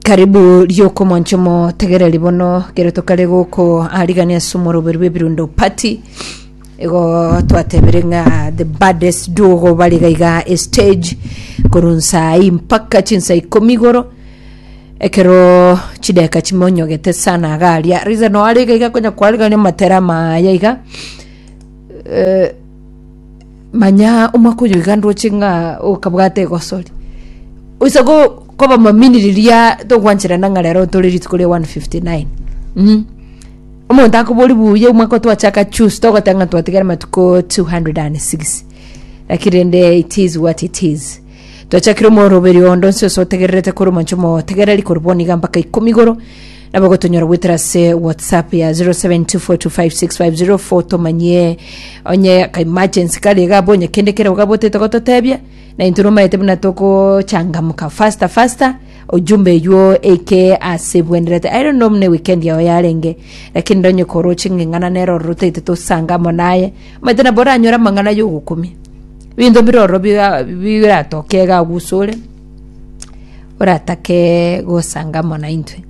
karibu riokomwancha omotegereri bono kero tokare goko arigania ase omoroberi bw'ebirundo party igo twatebire ng'a the baddest duo bari gaiga estage korwa nsaa ii mpaka chinsa ikomi igoro ekero chideka chimonyogete sana iga aria riza noo are iga iga konya kwarigania amatera amaya iga eh, Manya omwaka oyo iga ndoche ng'a okabwate egosori. Oise go koba mamini riria togwancherana ng'a rero tore rituko ria 159. Mm. Omonto akobori buya omwaka otwachaka chus togotenga ng'a twatigara matuko 206. Lakini rende it is what it is. Twachakire omoroberi ondo nse ose otegererete kore omonche omotegereri kore boniga mpaka ikomi igoro Nabo gotonyora goetera ase WhatsApp ya 0724256504 tomanyie onye ka emergency kare iga abwo onye kende kerego iga abotete gototebia na intwe nomaete buna togochangamuka faster faster ojumbe eywo eike ase bwenderete I don't know buna eweekend yao yarenge lakini nda onye koroche ng'eng'ana nere ororo otaete tosanga amo naye omanyete nabo oranyore amang'ana yogokumia ebinto bire ororo biga biratoke iga agwo ase ore oratake gosanga amo naintwe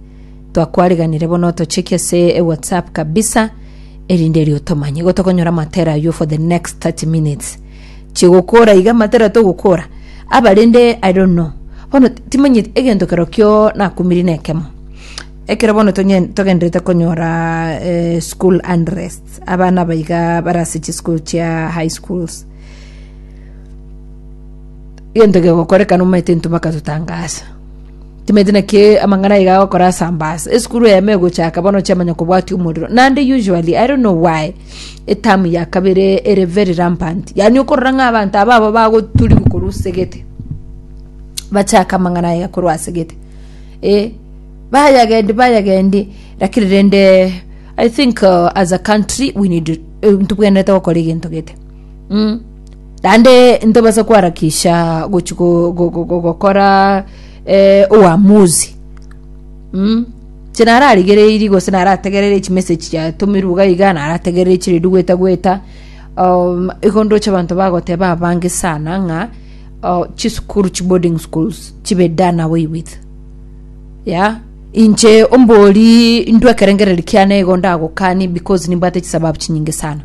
twakwariganire bono otocheki ase ewhatsapp kabisa erinde erio otomanye igo tokonyora amatera aywo for the next 30 minutes chigokora iga amatera togokora abarende i don't know bono ti- timanyeti egento kero kio nakumiri na ekemo ekero bono tonye- togenderete konyora eh, school unrest abana abaiga bare ase chischool chia high schools egento gegokorekana omanyete intwe mpaka totangaasa timanyete naki amang'ana aiga agokora asambaasa esukuru eyemo egochaka bono chiamanya kobwatia omorero naende usually i don't know why etamu ya kabere ere very rampant yaani okorora ng'a abanto aba aba bagoturiwu korwa ase egete bachake amang'ana aiga korwa ase egete eh bayagendi bayagendi lakini rende i think uh, as a country we need uh, ntobwenerete gokora egento gete mm. Naende ntobasa koharakisha gochi go- go- go- go- gokora eh, uamuzi mm? chinararigereiri gose narategerere chimeseji chiatomirwe iga iga narategerere chire rigweta gweta um, igo ndoche abanto bagoteba abange sana ng'a uh, chisukuru chi boarding schools chibe done away with ya inche ombori ndwekerengereri kiane igo ndagokani because nimbwate chisababu chinyinge sana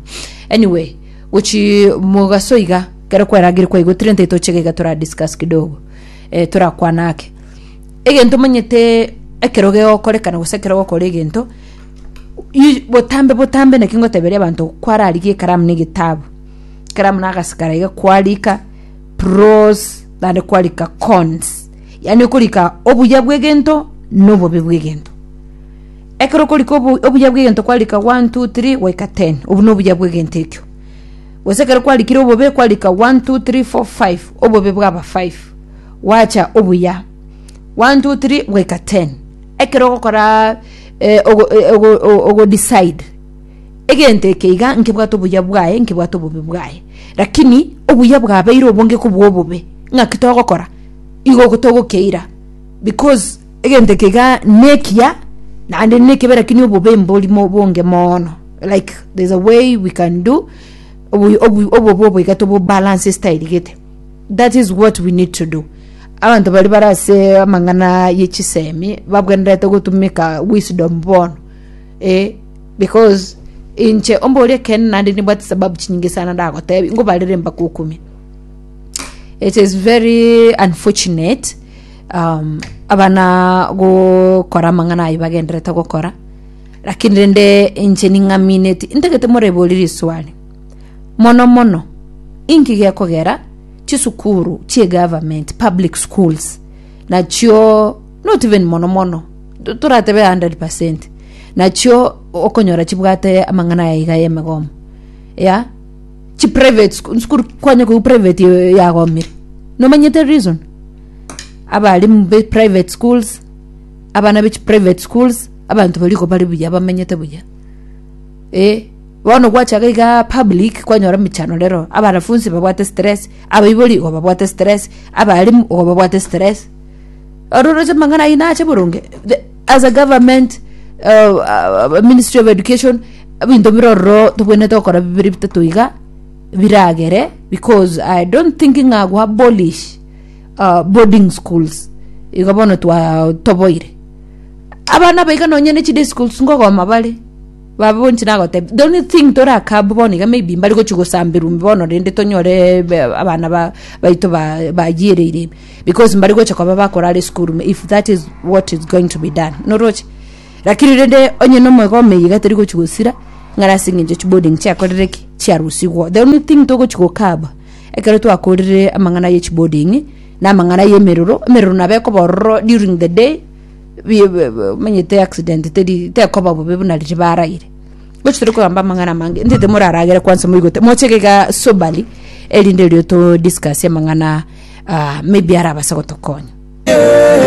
anyway Gochimogaso iga, ekero kwerageire kwaigotire ntai tochega iga tora discuss kidogo eh, torakwana ake. Egento omanyete ekero gegokorekana gose ekero gokora egento i- botambe botambe naki ngoteberia abanto kwararigia ekaramu na egetabu ekaramu na agasi karai iga kwarika pros naende kwarika cons yaani okorika obuya bwa egento na obobe bwa egento Ekero okorika obo- obuya bw'egento kwarika one, two, three, goika ten. Obwo nobuya bw'egento ekio. Gose ekero kwarikire obobe kwarika one, two, three, four, five. Obobe bwaba five. Gwacha obuya one, two, three, goika ten. Ekero ogokora eh, ogo- eh, ogo- o- ogodecide egento eke iga nkebwate obuya bwaye nkebwate obobe bwaye lakini obuya bwabeire obonge kobua obobe ng'aki togokora igo ogo togokeira because Egento eke iga nekiya naende nekebe lakini obobe mbori mo- bonge mono like there's a way we can do obu- obu- obobe obo iga tobobalance style gete that is what we need to do abanto bari bare ase amang'ana ye chisemi babwenerete gotumeka wisdom bono eh, because inche ombore ekeene naende nibwate sababu chinyinge sana ndagotebi ngobarere mbakokumia it is very unfortunate um, abana gokora amang'ana ayi bagenderete gokora lakini rende inche ning'amineti intagete moreboriri swali mono mono inki gekogera chisukuru chie government public schools nachio not even mono mono to- toratebe 100 percent nachio okonyora chibwate amang'ana ya iga y'emegomo ya chi private school school kwanya kuu private eh, yagomire nomanyete reason abalimu be private schools abana be chi private schools abanto baria igo bare buya bamenyete buya eh bono gwachaga iga public kwanyora mechando rero abanafunsi babwate stress abaibori igo babwate stress abalimu igo babwate stress oro roche amang'ana ayio nache boronge the- as a government uh, uh, ministry of education ebinto bire ororo tobwenerete gokora bibere bitato iga biragere because i don't think ng'a gwa abolish uh, boarding schools igo bono twatoboire abana aba iga nonya ne chiday schools ngogoma bare baba bonsi nagotebia the only thing torakabu bono iga maybe mbari gochi gosamberwa ime bono rende tonyore be- abana ba- baito ba- bagiereire ime because mbari gocha koba bakorara esukuru ime if that is what is going to be done noroche lakini rende onye nomwega omeye iga tari gochi gosira ng'ana ase eng'encho chiboarding chiakorire ki chiarusigwa the only thing togochi gokaba Ekero twakorire amang'ana ye chiboarding na amang'ana y'emeroro, emeroro nabo ekoba ororo during the day bi- bi- bi- omanyete accident teri tekoba bobe buna riria baraire. Gochi tore kogamba amang'ana amange ntete moraragere kwansa moigote mochege iga soberly erinde riroto discuss amang'ana ah maybe arabase gotokonya.